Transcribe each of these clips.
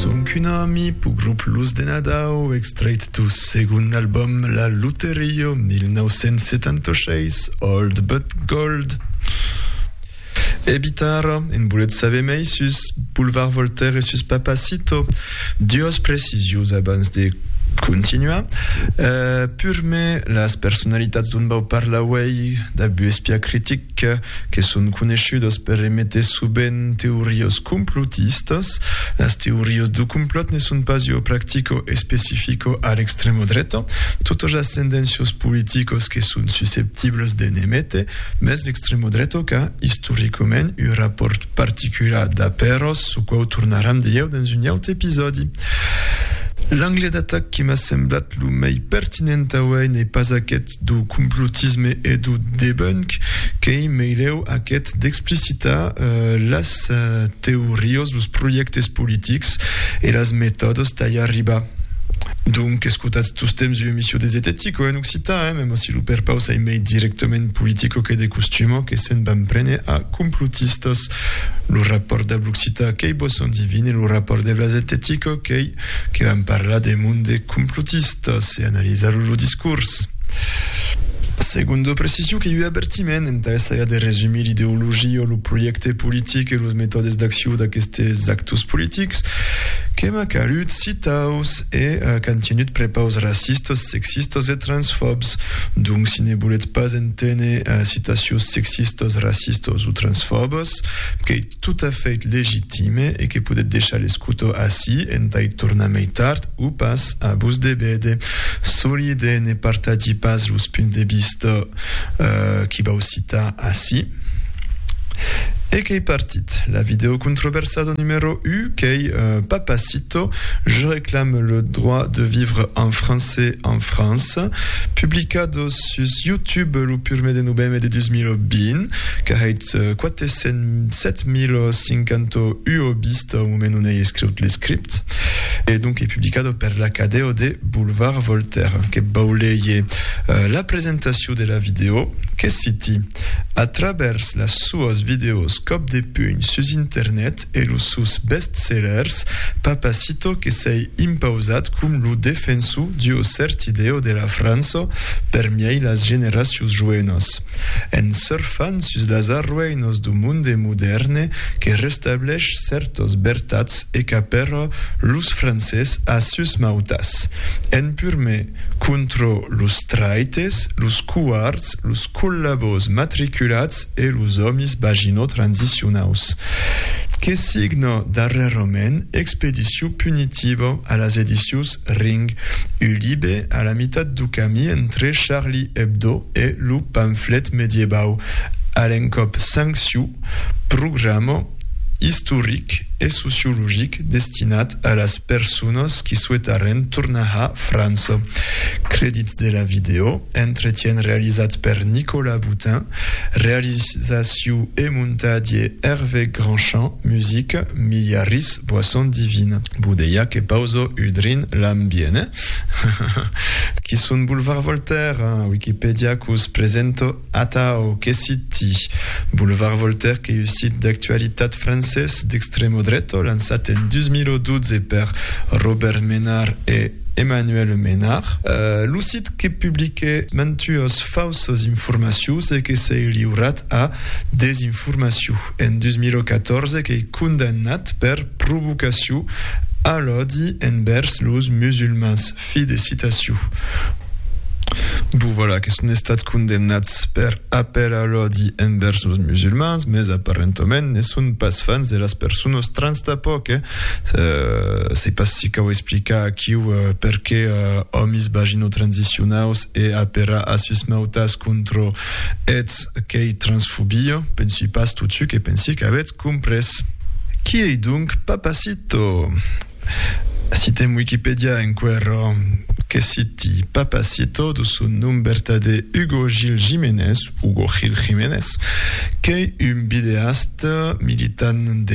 Sonc un ami p'u grop Luz de Nadau, extrait d'u segond album La Luterio, 1976, Old But Gold. E bitara, en bolet saber mei sus Boulevard Voltaire e sus Papacito. Duos precisions abans de continuar. Uh, purme, las personalitats dont vau parlar uei, dab u espiar critic, que que son coneishudas per emeter sovent teorias complotistas, las teorias de complòt ne son pas ua practica especifica a l'extrema dreta, totas las tendéncias politicas que son susceptibles de n'emeter, mès l'extrema dreta qu'a istoricament un rapòrt particular d'aperas, çò quau tornaram dilhèu dens un aute episòdi. L'angle d'atac que m'a semblat lo mei pertinent auèi n'es pas aqueth, do complotisme e do debunk, qu'ei meilèu aqueth d'explicitar las teorios, los projèctes politics e las metòdes tà i arribar. Donc, escotatz tostemps ua emission de Zetetico en occitan, eh, mèma si lo perpaus ei mei directament politico que de costuma, que se'n van prene a complotistas. Lo rapòrt dab l'occitan qu'ei boson divin e lo rapòrt de Blaset de Tico qu'ei que vam parlar de mond de complotistas e analizar lo discors. Segundo precision qu'ei ua avertiment entà essaiar de resumir l'ideologia o lo projècte politic e los metòdes d'accion d'aquestes actors politics que m'ac alut citaus. e qu'an tenut prepaus racistas, sexistas e transfòbs. Donc, si ne volètz pas enténer citacions sexistas, racistas o transfòbas, qu'ei tot a fait legitime e que podètz deishar l'escoutor ací entà-i tornar mei tard o pas a vos debède. Solide, ne partatgi pas los punts de vista qu'i vau citar ací. E qu'ei partit la vidèo controversada numèro 1 qu'ei pas pas Je réclame le droit de vivre en français en France, publicado sus YouTube lo purmé de novembre de 2020, qu'arreit 407.051 vista au moment on ei escriut l'escript, e donc ei publicado per l'Acadèo de Boulevard Voltaire. Que vau leir la presentacion de la vidèo, que citi, A travèrs las soas vidèos còp de punh sus internet, e los sòus best-sellers, Papacito que s'ei impausat com lo defensor d'ua cèrt idèo de la França permiei las generacions joenas, en surfant sus las arrueinas d'u monde modèrne que restablèch cèrtas vertats e qu'apèra los francés a sus mautas, en purme contra los traites, los covards, los collabos matriculats, e los òmis Bagino transicionaus, que signa darrèrament Expedició punitiva a las edicions Ring, un libe a la mitat du camí entre Charlie Hebdo e lo pamflet medievau, a l'encòp sancciu, programa istoric e sociologic destinat a las personas qui souetarren tornar a França. Credits de la vidèo, Entretien realizat per Nicolas Boutin. Realizacion e montatge, Hervé Grandchamp, musica, Milia Ris, Boisson Divine. Boudeiac e Pauzo Udrin Lambiene. Qui son Boulevard Voltaire? Wikipedia qu'os presento atau que siti. Boulevard Voltaire qu'ei un sit d'actualitat francés d'extremo dreto lançat en 2012 per Robert Ménard e Emmanuel Ménard. Lo sit. Eth que publique mantues fauses informacions e que s'ei liurat a desinformacion en 2014 qu'ei condemnat per provocacion a l'òdi envèrs los musulmans. Fi de citacion. Bon, voilà, que son estats condemnats per apèl a l'òdi envèrs los musulmans, mès aparentoment ne son pas fans de las persones trans tapòc, eh? Euh, se pas si cau explicar aquiu euh, perqué euh, òmis vaginotransicionaus e apera a sus mautas contro ets qu'ei transfobia, pensi pas totu que pensi qu'avètz comprés. Qui ei donc Papacito? Citem Wikipedia enquerò que citi Papacito do son nom vertadé Hugo Gil Jiménez, Hugo Gil Jiménez, qu'ei un videasta militant de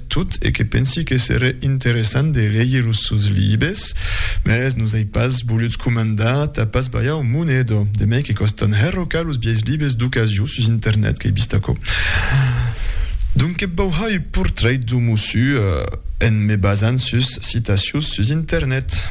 Tot e que pensi que seré interessant de leir los sòus libes, mès nos ai pas volutz comandar tà pas balhar un monedo, de mai que còstan hèr o ca los biais libes d'ocasio sus internet qu'ai vist aquò. Donque vau har ua portrait dau mossu en me basant sus citacions sus internet.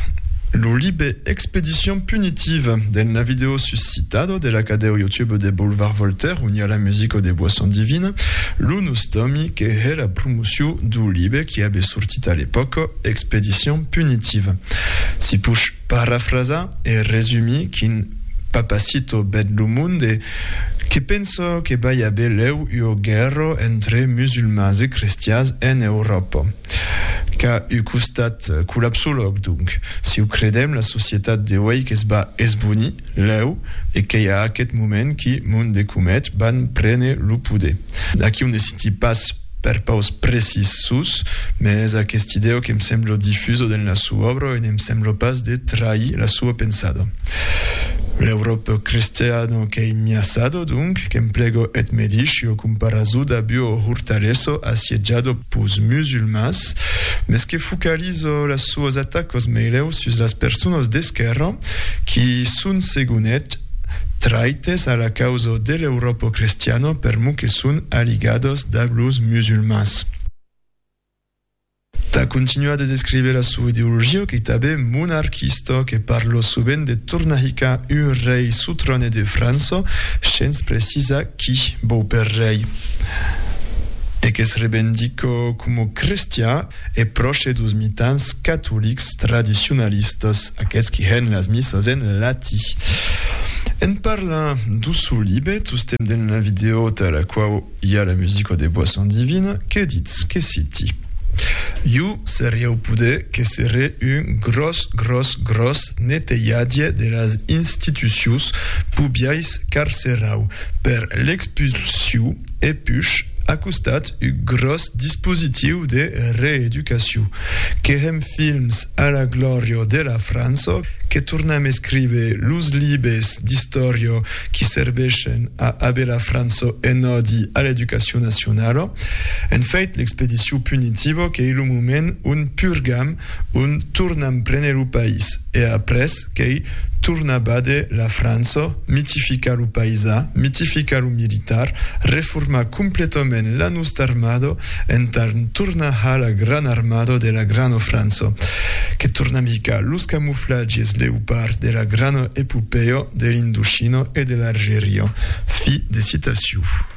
Lo libe Expedition punitive, del Navideo sus. Citado de la cadèu YouTube de Boulevard Voltaire on i a la musica de Boisson Divine, lo nus tòmi que hè la promociu duu libe qui abe sortit a l'epòca, Expédition punitive. Si push parafrasar e resumir quin Papacito bèt lo monde, que penso que bai abe lèu ua guèrra entre musulmans e crestians en Euròpa. Qu'a un costat collapsològ, donc, si o credèm, la societat de uèi que's va esbonir, lèu, e qu'ei a aqueth moment qui Mond e Comet van prene lo poder. Aquí o ne citi pas per paus precís sus, mès aqueth idèu que'm semblo difuso dens la soa òbra e ne'm semblo pas de trahir la soa pensada. L'Euròp cristiano qu'ei miasado, donc, que'm plego eth me dish, jo comparazo dab io hortalesso assiejado, pus musulmans, mes que focaliza las soas atacas meleu sus las personas d'esquèrra qui son, segon eth, traites a la causa de l'Euròpa crestiana permor que son aligadas dab los musulmans. Tà continuar de descriver la soa ideologia, qu'ei tanben monarquista, que parla sovent de tornar hicar un rei sotrane de França, shens precisar qui vò per rei e que se revendica coma crestian e pròche dos mitans catolics tradicionalistas, aqueths qui hèn las missas en latí. En parlant do sò libe, tostemp dins la vidèo tà la quau i a la musica de Boisson Divine, que ditz, que citi, Jo serieu poder que seré un gròs, gròs, gròs netejadie de las institucius pubiais eth carcerau per l'expulsiu e push a costat eth gròs dispositiu de reeducaciu. Qu'èren films a la glòria de la França, que tornam escríver los libes d'istòria qui servèshen a aver la França en òdi a l'educacion nacionala. En fait, l'expediciu punitiva qu'ei lo moment on purgam, on tornam préner lo país e après, qu'ei tornar bade la França, mitificar lo paisà, mitificar lo militar, reformar completament la nosta armada entà tornar har la grana armada de la grana França, que tornam hicar los camuflatges Léopard de la grana epopèa de l'Indochina e de l'Argeria. Fi de citacion.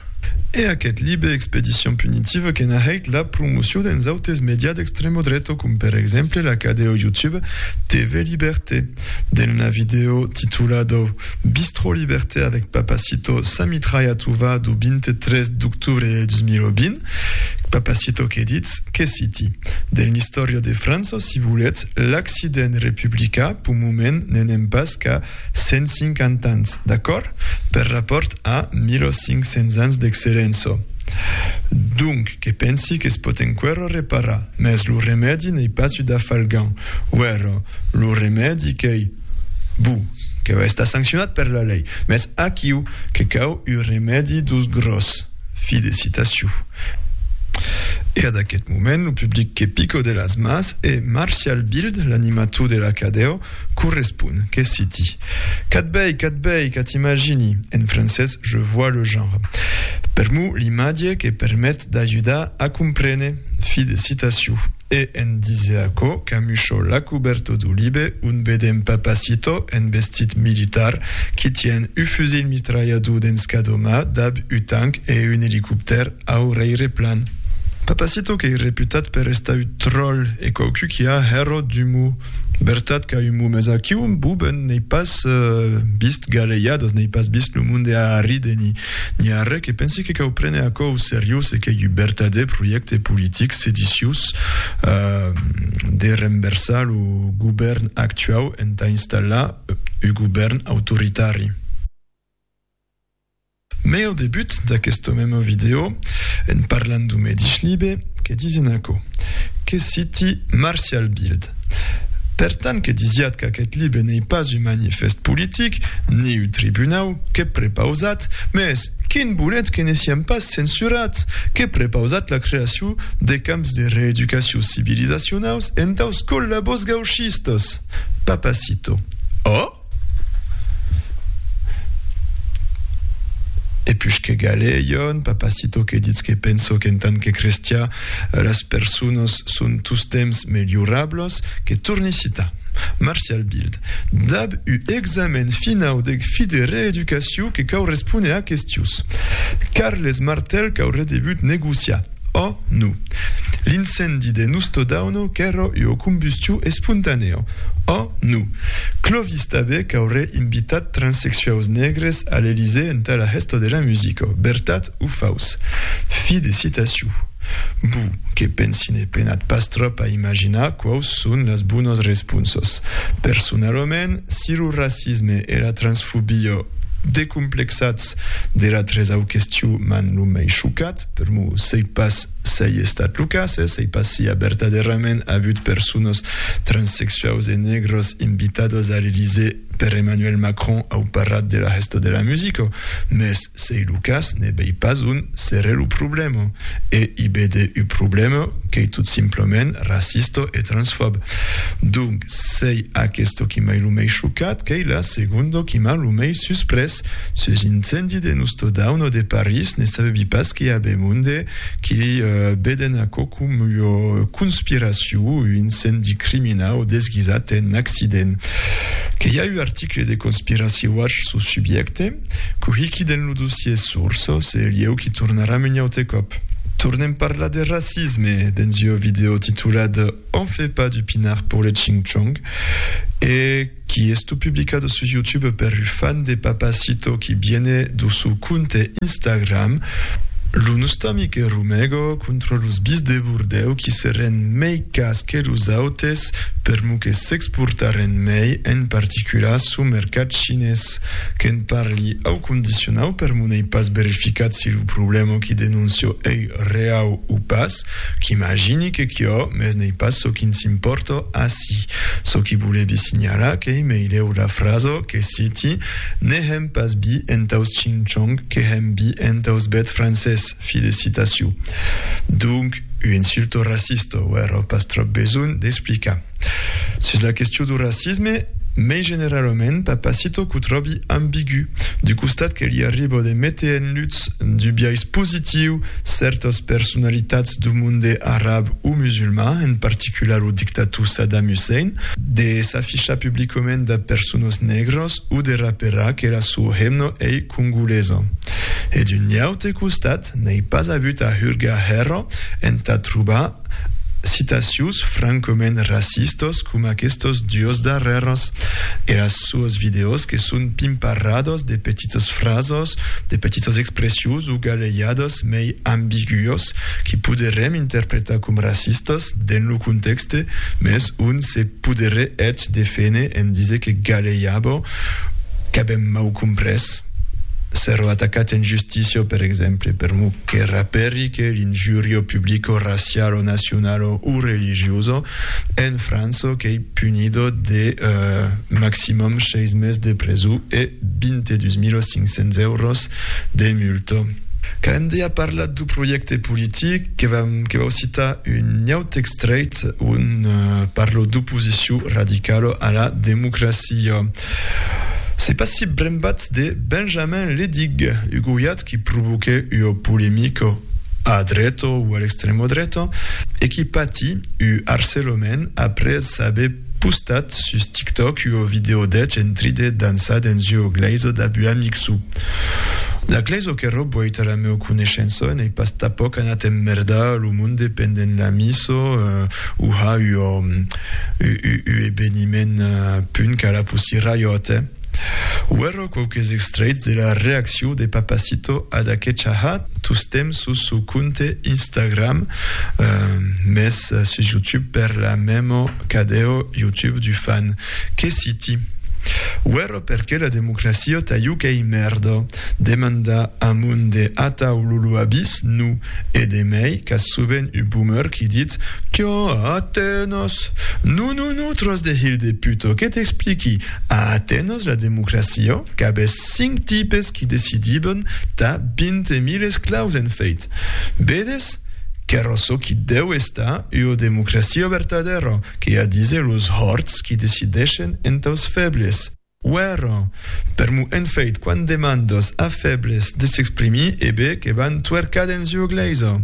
E aqueth libe Expedition punitive que n'a hèit la promocion dens autes medias d'extremo dreto com per exemple la cadeo YouTube TV Liberté. Dens una vidèo titulado Bistrot Liberté avec Papacito sa mitralha tuvaa du 23 d'octubre de 2020, Papacito que ditz que citi, Dens l'istòria de França, si voletz, l'accident republicà, p'un moment, n'anem pas qu'a 150 ans, d'acòrd? Per rapòrt a 1500 ans d'excelenço. Donc, que pensi que's pòt enquerò reparar, mès lo remèdi n'ei pas ud afalgan. Uèrò, lo remèdi qu'ei, bu, que va estar sanccionat per la lei, mès aquiu que cau ud remèdi dos gròs. Fi de citaciu. E ad aqueth moment, lo public que pico de las mas e Martial Bild, l'animator de l'Acadèo, correspon, que citi. Qu'a-t bèi, qu'a-t bèi, qu'a-t imagini, en francés je vois le genre. Per mo l'imatge que permet d'ajudar a comprene. Fi de citacion. E en dise aquò, camucho la coberto du libe on vedem Papacito en vestit militar qui tien u fusil mistralhador dens cada ma dab u tanc e un elicoptèr au reireplan. Papacito qu'ei reputat per estar u tròl e quauqu qui a hèro d'umor. Bertat qu'a un momés aquiu, Buben, n'ei pas vist galeiadas, n'ei pas vist lo monde a arride ni, ni arré, que pensi que cau prene aquò au seriós e qu'ei un bertadèr projècte politic sediciós de renversar lo govèrn actuau entà installar un govèrn autoritari. Mès au debut d'aquesta mema vidèo, en parlant d'un medish libe, que disin aquò, que citi Martial Bild. Per tant que disiat qu'aqueth libe n'ei pas un manifèst politic, ni un tribunau, que prepausat, mès quin bolet que ne siam pas censurat! que prepausat la creaciu de camps de reeducaciu civilizacionaus entaus collabos gauchistas. Papacito. Ò! E pus que galè, Iòn, papacito que ditz que penso qu'en tant que crestià las personas son tostemps melhorablas, que torni citar Martial Bild dab u examen finau deg fi de reeducaciu que cau respóner a questius. Carles Martel cau redebut negociar. Ò, no. L'incendi de Nustodauno qu'èra ua combustion espontanèa. Ò, no. Clovis tanben qu'aurè invitat transexuaus negres a l'Elysée entà la hèsta de la musica. Vertat o faus? Fi de citacion. Bo, que pensi ne penat pas tròp a imaginar quaus son las bonas responsas. Personalament, si lo racisme e la transfobia, decomplexats de la tresau question, m'an lo mai chocat, estat. Per mo, sei pas s'ei estat lo cas, eh? Sei pas si a vertadèrament avut personas transsexuaus e negras invitadas a l'Elysée per Emmanuel Macron au parrat de la hèsta de la musica, mès s'ei lo cas, ne vei pas on serè lo problèma. E i vede u problèma qu'ei tot simplament racista e transfòb. Donc, s'ei aquesta qui m'ei lo mei chocat, qu'ei la segonda qui m'a lo mei susprés. París. Sus l'incendi de Nusto Dauno de París, ne sabebi pas que i a be monde que beden aquò com ua conspiracion, un incendi criminau desguisat en accident. Que i a un article de Conspiracy Watch sus subjècte, cohiqui dens lo dossier Source, se lieu qu'i tornaram un aute còp. Tornem parlar de racisme dens ua vidèo titulada On fait pas du pinard pour les Ching Chong e, qui esto publicado sus youtube per u fan de papacito qui viene do su compte instagram lo nostami que rumego contra los bis de bordèu qui serren mei cas que los autes per mo que s'exportarren mei en particular su mercat chinés que'n parli au condicionau per mo n'ei pas verificat si lo problèma qui denoncio ei reau o pas Qu'imagini que quíò, mès n'ei pas çò qui'ns impòrta ací. Çò qui volevi signalar qu'ei meilèu la frasa que citi, Ne hèm pas bi entaus ching-chong que hèm bi entaus bèths francés, fi de citacion. Donc, ua insulta racista, o era pas tròp besonh d'explicar. Sus la question du racisme, mei generalament, Papacito qu'o tròbi ambigu, du costat que li arriba de méter en lutz, du biais positiu, cèrtas personalitats du monde arab o musulman, en particular o dictator Saddam Hussein, de s'afichar publicament dab personas negras o de raperar que la sua hemna ei congolesa. E d'un iaute costat, n'ei pas avut a hurgar hèra entà trobar citacions francament racistos com aquestos duos darrèrs. Era suos vidèos que son pimparrados de petites frasos, de petites expressions o galeiadas mei ambiguos que poderem interpretar com racistas dens lo contèxte mès ont se poderé eth deféner en diser que galeiabo qu'avem mau comprés. S'èro atacat en justicio, per exemple, per m'o que raperique l'injurio publico racialo, nacionalo o religioso, en França qu'ei punido de maximum seis mes de preso e 22.500 euros de multa. Cande a parlat d'o projècte politic, que vam que vau citar un autre extrèit on parlo d'oposicion radicalo a la democracia. Se passi brembat de Benjamin Ledig, ugoiat qui provoque ua polemica a dreta o a l'extrema dreta e qui pati u harcelament après aver postat sus TikTok ua video deth entri de dançar dens ua glèisa dab un amic suu. La glèisa qu'era boit ara meu coneishença n'ei pas tapoc anat emmerda, lo monde pendent la missa u ha ua Ua eveniment punt qu'a la Pussy Riot, eh? Uèrrò quauques extrèits de la reaccion de Papacito ad aquecha ha tostemps sus sò compte Instagram, mès sus YouTube per la mèmo cadèu YouTube du fan. Que siti! Uèrrò perqué la democracia ta UK mèrda! Demanda amont de atau Lulu Abis, nu, e de mei, qu'as sovent u boomer qui dit, Qu'a Atenas? Nu, nu, nu, tros de hilh de puto, que t'expliqui, a Atenas la democracia, qu'abés cinc tipes qui decidiben tà vinte mil esclaus en feit. Vedes? Querò çò qui deu estar ua democracia vertadèra, que a dise los hòrts qui decideshen entaus febles. Uèra, per mon enfeit quan demandas a fèbles de s'exprimir e be que van tuercar dens ua glèisa.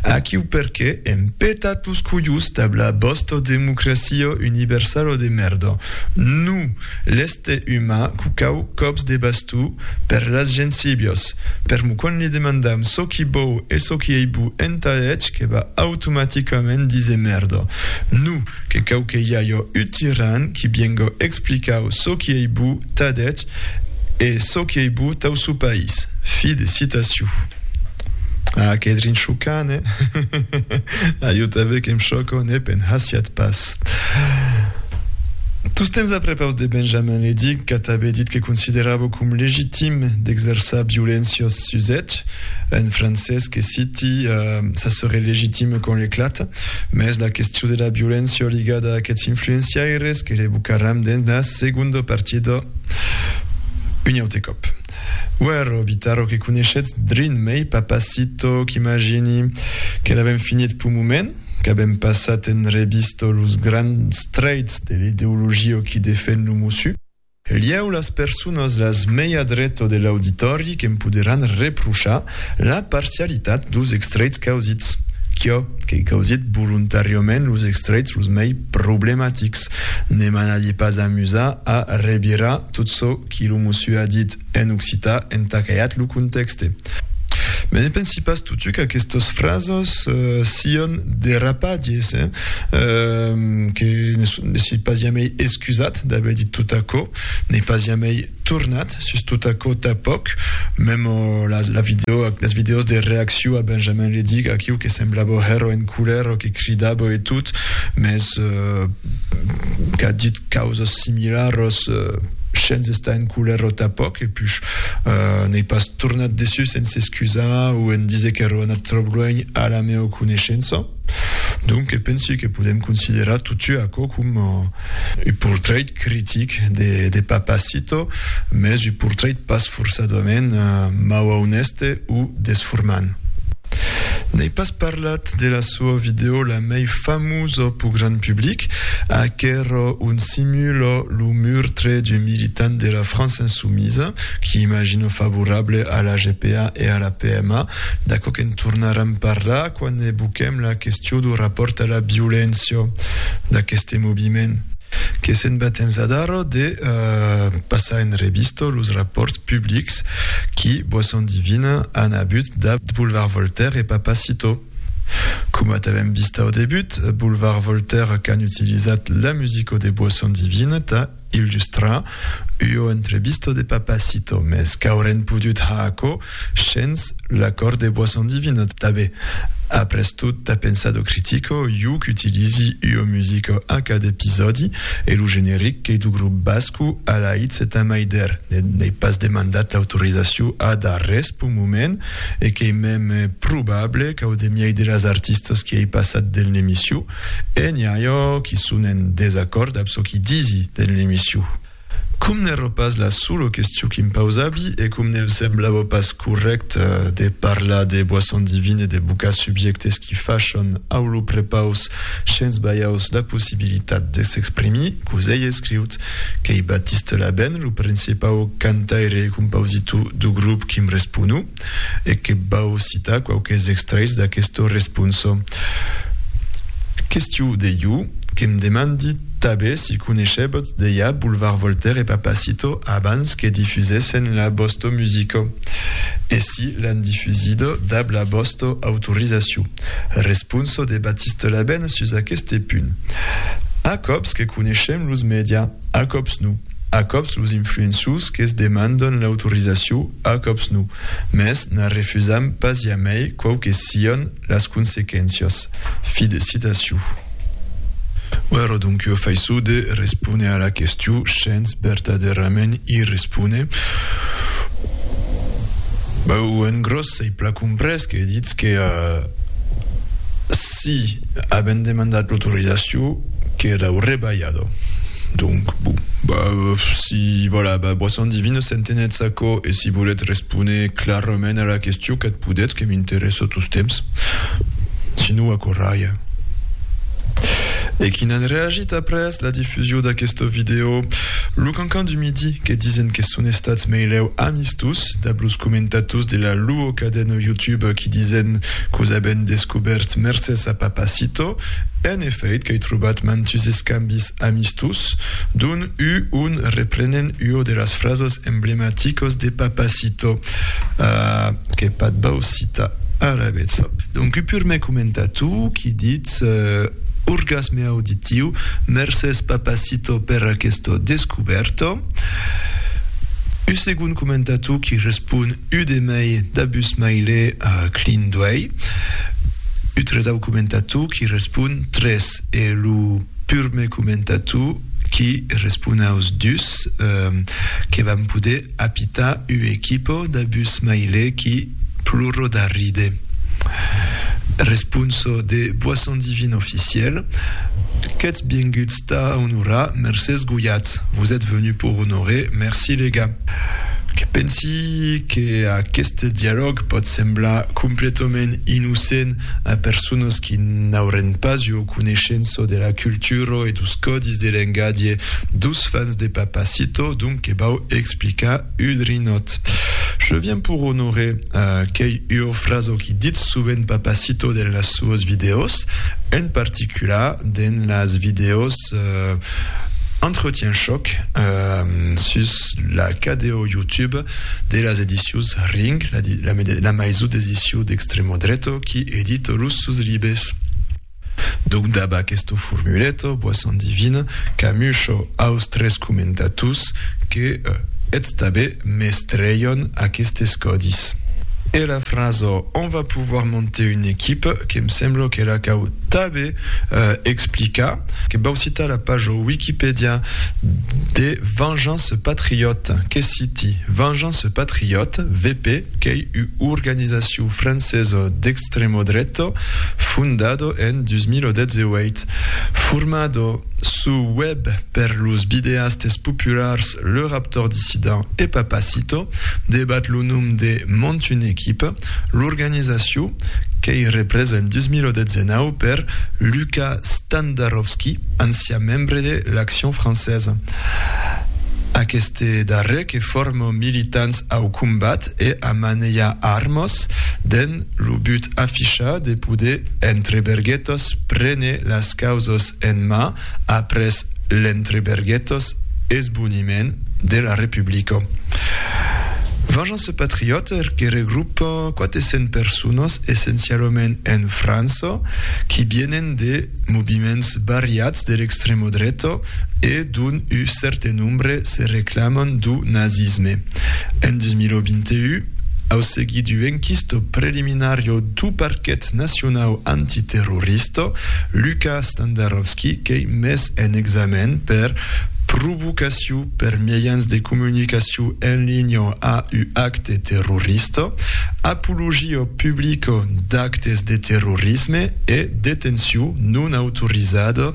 Aquiu perqué èm petat los colhos dab la vòsta democracia universala de mèrda. No! L'èster umà cucau còps de bastó per las gensíbias. Per mon quan li demandam çò qui bou e çò qui ei bo entà hètge que va automaticament díser mèrda. No! Que cau que i ajo ut tiran qui biengo explicau çò qui ei bu ta deth e çò qui ei bu tau su país. Fi de citaciu. Ah, qu'ei drin chocant, eh? A jo tanben que'm chòco, ne pe'n hasiatz pas. Tostemps a prepaus de Benjamin Ledic, qu'a tanben dit que consideravo com legitim d'exerçar violéncios Suzèth, en francés, que citi, Ça serait légitime qu'on l'éclate, mès la question de la violéncia ligada a aquests influenciaires que l'evocaram dens la segonda partida un aute còp. Uèrro, Vitaro, que coneishetz drin mei Papacito, qu'imagini que l'avèm finit p'un moment, qu'avèm passat en revista los grands traits de l'ideologia qui defèn lo mossu, Lieu las personas las mei a dreto de l'auditòri que'm poderàn reprochar la parcialitat dos extraits causits. Quio qu'ei causit volontàriament los extraits los mei problematics. Ne m'anadie pas amusar a revirar tot çò qui lo mossu a dit en occità entà qu'aiat lo contèxte. Me ne pensi pas totu qu'aquestas frasas sián derrapatges, eh? Que ne soi pas jamei excusat d'aver dit tot aquò, n'ai pas jamei tornat sus tot aquò tanpòc, mèm las vidèos de reacciu a Benjamin le Dic, aquiu que semblava hèr en colèra, que cridava e tot, mès qu'a dit causas similaras shens estar en colèra tanpòc, e push, N'ei pas tornat dessús en s'excusar o en díser qu'eró anat tròp luènh a la meua coneishença. Donque pensi que podem considerar totjou aquò com un portrait critic de Papacito, mès un portrait pas forçadament mau-aunèste o desformant. N'ei pas parlat. de la sua vidèo la mei famosa pur grand public, a qu'èra un simul lo murtre d'un militant de la França insumisa, qui imagino favorable a la GPA e a la PMA, d'aquò que'n tornaram parlar quand evoquem la question dau rapòrt a la violéncia d'aqueste moviment. Que se'n va temps adara de passar en revista los rapòrts publics Alex, qui, boisson divina, an abut dab boulevard Voltaire e Papa Citeau. Coma t'avèm vist au debut, boulevard Voltaire qu'an utilizat la musico de boisson divina tà illustrar ua entrevista de Papa Citeau, mès qu'aurèn podut har aquò shens l'acòrd de boisson divina tanben. Après tot, tà pensar do critico, iu qu'utilizi ua musica a cada episòdi, E lo generic qu'ei du grop Bascu, Alaitz e Tamaider, ne n'ei pas demandat l'autorizaciu ad arrés p'un moment, e qu'ei mem probable qu'au demiei de las artistas qui ei passat dens l'emiciu, e n'i a jo qui son en desacòrd ab çò qui disi dens l'emiciu. Com n'èro pas la sola question qui em pausabi, e com ne'm semblava pas correct de parlar de boisson divine e de bocar subjèctes qui fachon au lo prepaus Shens balhaus la possibilitat de s'exprimir, cos ei escriut qu'ei Baptiste Laben, lo principau cantaire e compausitò dau grop qui'm respono, e que vau citar quauques extraits d'aquesta responsa. Questió de jo, que'm demandi tabé si coneishèbotz dejà Boulevard Voltaire e Papacito abans que difusèssen la vòsta musica, e si l'an difusida dab la vòsta autorizacion. Responso de Baptiste Labène sus aqueste punt. A còps que coneishem los mèdia, a còps non. A còps los influenços que's demandan l'autorizacion, a còps non. Mès n'a refusam pas jamai quau que sian las consequéncias. Fi de citacion. Ora donc jo faiço de respóner a la question shens vertadèrament i respóner. S'ei plan comprés que ditz que si avèm demandat l'autorizacion qu'era rebalhada. Donc, bon, si vòla ba boisson divine s'entenetz aquò e si volètz respóner clarament a la question qu'ath podetz que m'interèssa tostemps. Si non aquò ralha. E qui n'an reagit après la difusion d'aquesta vidèo, lo. Mancan du Midi que disen que son estats meilèu amistós dab los comentators de la luo cadena YouTube qui disen qu'os aben descobèrt mercés a Papacito. En efèit qu'ai trobat mantus escambis amistós d'un u un reprenen uo de las frasos emblematicos de Papacito que patbau citar alavetz. Donc u purmèr comentator qui dit. Ets orgasme auditiu. Mercés Papacito per aquesta descubèrta. U segon comentator qui respon u de mei dabusmile clin d'uèi. U tresau comentator qui respon tres e lo purme comentator qui respon aus dus que vam poder Apita u equipo da bus maile qui pluro da ride. Responso de Boisson Divine Officiel, Qu'ètz bienguts tà onorar Mercés Guyat, vos ètz venus pour honorer, merci les gars. Que pensi que aqueste dialòg pòt semblar completament innocent a personas qui n'aurén pas ua coneishença de la cultura e dos còdis de lengadie dos fans de Papacito, donc, Que vau explicar Udrinòt. Je viens pour honorer qu'ei ua fraso qui ditz sovent Papacito den las suas vidèos, en particular den las vidèos Entretien Choc sus la cadèo YouTube de las edicius Ring, la maison d'ediciu d'extremo dreto qui edita los sus libes. Donc dab aquesto formuleto, bois endivine, qu'amusho aus tres comentatus que eths tabé mestreion aquestes còdis. E la fraso On va pouvoir monter une équipe, que'm semblo que la cau tabé explicar, que vau citar la pajo Wikipedia de Vengeance Patriote, que citi, Vengeance Patriote, VP, qu'ei u organizaciu francesa d'extrèma-dreta, Stremodretto, fondado en 2018. Formado suu web per los videastes populars Le Raptor Dissident e Papacito, debat lo nom de Monte une équipe, l'organizacion qu'ei represa en 2019 per Luca Standarovski, ancian membre de l'Action Française. Aqueste darrer que forma militants au combat e a manelhar armas dens lo but afichat de poder, entre berguetas, prene las causas en mà après l'entre berguetas esboniment de la Republica. Vengeance Patriote que regrupa 400 personas essencialament en França qui vienen de moviments variats de l'extremodreta, e dont u cèrte nombre se reclaman dau nazisme. En 2021, au seguit du enquisto preliminario dau Parquet Nacionau Antiterrorista, Luka Standarovski qu'ei mes en examen per provocaciu per miejans de comunicaciu en linha a u acte terrorista, apologia publica d'actes de terrorisme e detenciu non autorizada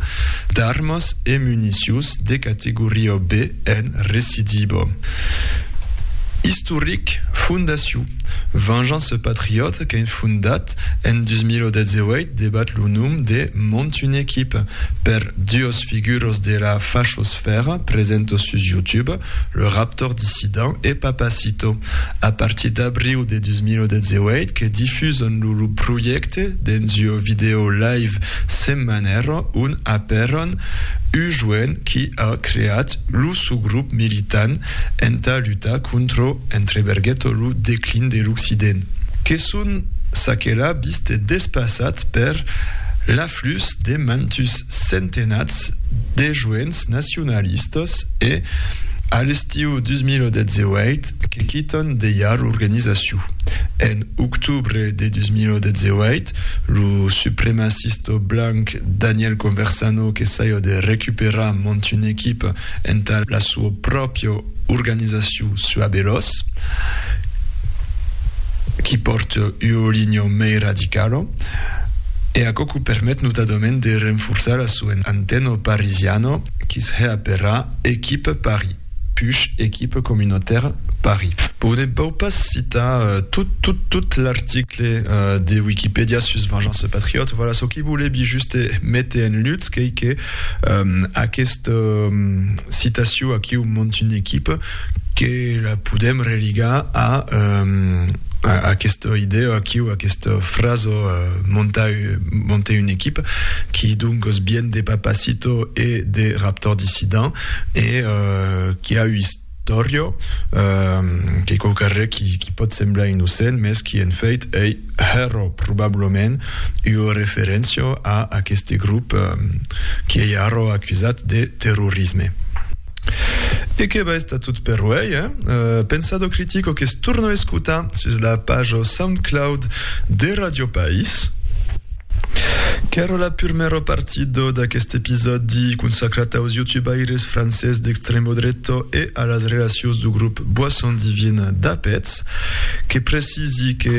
d'armas e municions de categoria B en Recidibo. Istoric, Fondacion Vengeance Patriote qu'en fondat en 2018 debat lo nom de Mont une equipe per duos figuros de la fachosfèra, presento sus YouTube, Le Raptor dissident e Papacito, a partir d'abriu de 2018, que difusan lo lo projècte dens ua vidèo live setmanèra ont apèran ua joen qui a creat lo sò grop militant entà lutar contra, entre bergueta, lo declin de l'Occident. Que son çaquelà vist e despassat per la. Plus de mantus centenats de joents nacionalistas e, a l'estiu 2018, que quitàn dejà l'organizacion. En octubre de 2018, lo supremacista blanc Daniel Conversano qu'essaja de recuperar mantuna equipa entà la sua pròpia organizacion sua de los qui pòrte ua linha mei radicala e aquò que permet notadament de renforçar la sua antena parisiana qui se hè aperar Equipe Paris, push Equipe Communautaire Paris. Bon, ne vau pas citar tot, tot, tot l'article de Wikipèdia sus Vengeance Patriote, voilà, çò que volevi juste méter en lutz qu'ei que Aquesta citacion aquiu mont una equipa que la podem religar a aquesta idèa aquiu, aquesta frasa montar una equipa, qui doncas vien de Papacito e de Raptor Dissident e qui a Dorio, qu'ei quauquarre qui qui pòt semblar innocent, mès qui en fèit ei hèro probablament ua referéncia a aqueste grop qui ei ara acusat de terrorisme. E que va estar tot per uèi, eh? Pensado critico que's torna escotar sus la paja Soundcloud de Radio País. Qu'èra la purmèra partida d'aqueste episòdi consacrat aus youtubaires francés d'extremo dreta e a las relacions du grup Boisson Divine d'Apètz. Que precisi que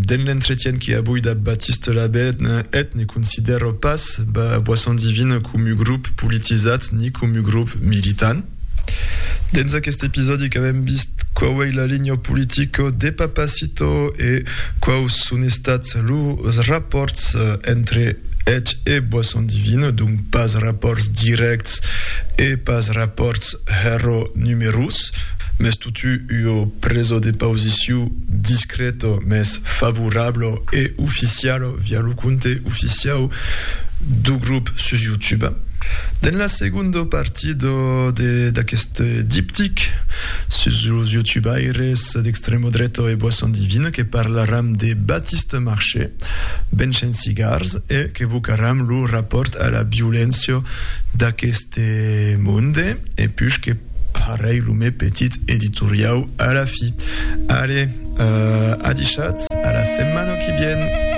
dens l'entretien que avui dab Baptiste Labène eth ne considèra pas Boisson Divine comu grup politizat ni comu grup militant. Dins aquest episòdi qu'avèm vist quau ei la linha politica de Papacito e quaus son estats los rapòrts entre eth e Boisson Divine, donc pas rapòrts dirècts e pas rapòrts hèro numerós, mès totú ua presa de pausiciu discreta mès favorabla e oficiala via lo compte oficiau dau grop sus YouTube. Dins la segonda partida, Do de d'aquest diptic sus los youtubaires d'extremo dreto e boisson divina que parlaram de Batiste Marché, Benchen Cigars e qu'evocaram lo rapòrt a la violéncia d'aqueste monde e puish que parèi lo me petit editoriau a la fi. Alé, adishatz, a la setmana qui vien!